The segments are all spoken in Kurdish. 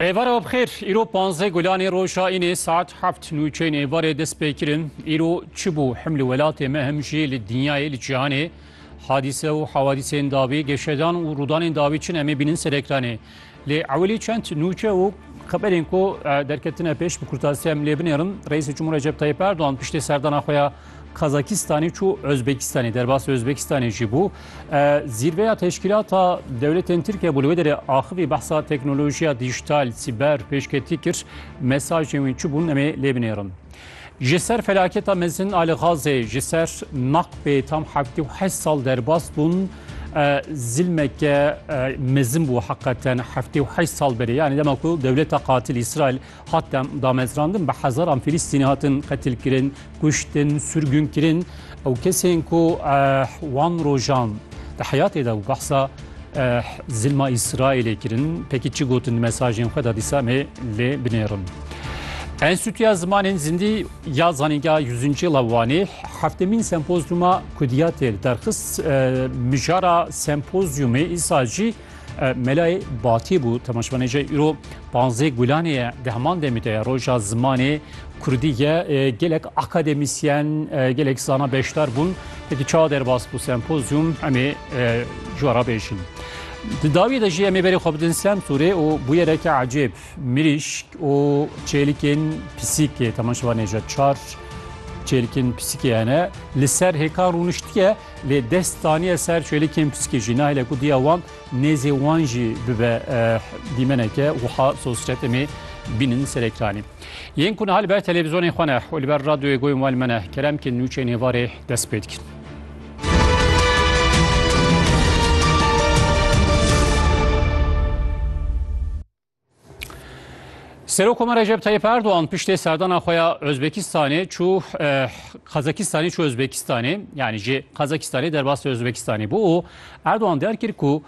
Êvarê web xêr, îro panzdeh gulanê roja înê saet heft nûçeyên êvarê dest pê kirin. Îro çi bû hem li welatê me hem jî li dinyayê li cîhanê hadîse û hawadîsên dawî, geşedan û rûdanên dawî çin em ê bînin ser ekranê. Lê ewilî çend nûçe û xeberên ku derketine pêş bi kurtasiya em lê binêrin. Reîsê Cumhur Recep Tayyîp Erdogan piştê serdana xwe ya Kazakistanê çû Özbekistanê derbasê Özbekistanê jî bû. Zîrveya teşkîlata dewletên Tirkiye bû li wê derê axivî behsa teknolojiya dijital, sîber pêşketî kir. Mesajên wî çi bûn emê lê binêrin. Ji ser felaketa mezin a li Gazê ji ser naqbê tam heftê û heşt sal derbas bûn. Zilmeke mezin bû heqeten heftê û heşt sal berê. Yani dema ku dewleta qatil İsrail Hat damezrandin bi hezaran Filîstînî hatin qetilkirin, kuştin, sürgûnkirin û kesên ku wan rojan di heyatê de û behsa zilma Îsraîlê kirin pekî çi gotin di mesajên xwe de dîsa em ê lê binêrin. Enstîtuya Zimanên Zindî ya Zanîngeha Yüzüncî la Wanê heftemîn sempozyuma kudiyatê li derxist mijara sempozyumê îsal jî Melayê Batî bû temaşvanê jê îro panzê gulanê ye di heman demê de ye roja zimanê Kurdî ye gelek akademîsyen gelek zana beşdar bûn wekî çawa derbas bû sempozyum emê ji we re bêjin. Di dawiyê de jî emê berê xwe bidin Semsûrê û bûyereke ecêb mirîşk û çêlikên pisîkê temaşvanê je çar çêlikên pisîkê hene li ser hêkan rûniştiye Lê dest daniye ser çêlikên pisîkê jî nahêle ku diya wan nêzê wan jî bibe dîmeneke wiha sosretê me bînin ser ekranî. Yên ku niha li ber televîzyonên xwe ne û li ber radyoyê goyên wan me ne keremkên nûçeyên êvarê dest pê dikin. Serokoma Recep Tayyip Erdoğan piştê serdana xwe ya Özbekistanê çû Qazakistanê çû Özbekistanê yanî ji Qazakistanê derbas li Özbekistanê bû û Erdoğan der kir ku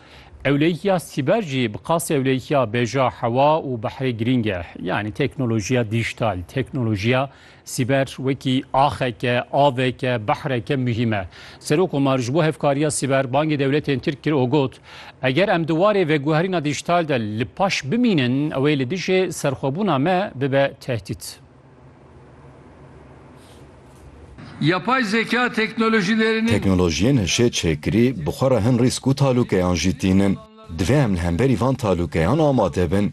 ewleyiya sîber jî bi qasê ewleyiya bêja hewa û behrê girîng e yanî teknolojiya dîjital teknolojiya Sîber wekî axeke, aveke, behreke muhîm e. Serok Omar ji bo hevkariya sîber bangê dewletên Tirk kir û got, Eger em di warê veguherîna dîjîtal de li paş bimînin, ew ê li dijî serxwebûna me bibe tehdît. Yapay zeka teknolojîlerînî. Teknolojiyên hişê çêkirî bi xwe re hin rîsk û talûkeyan jî tînin. Divê em li hemberî van talûkeyan amade bin.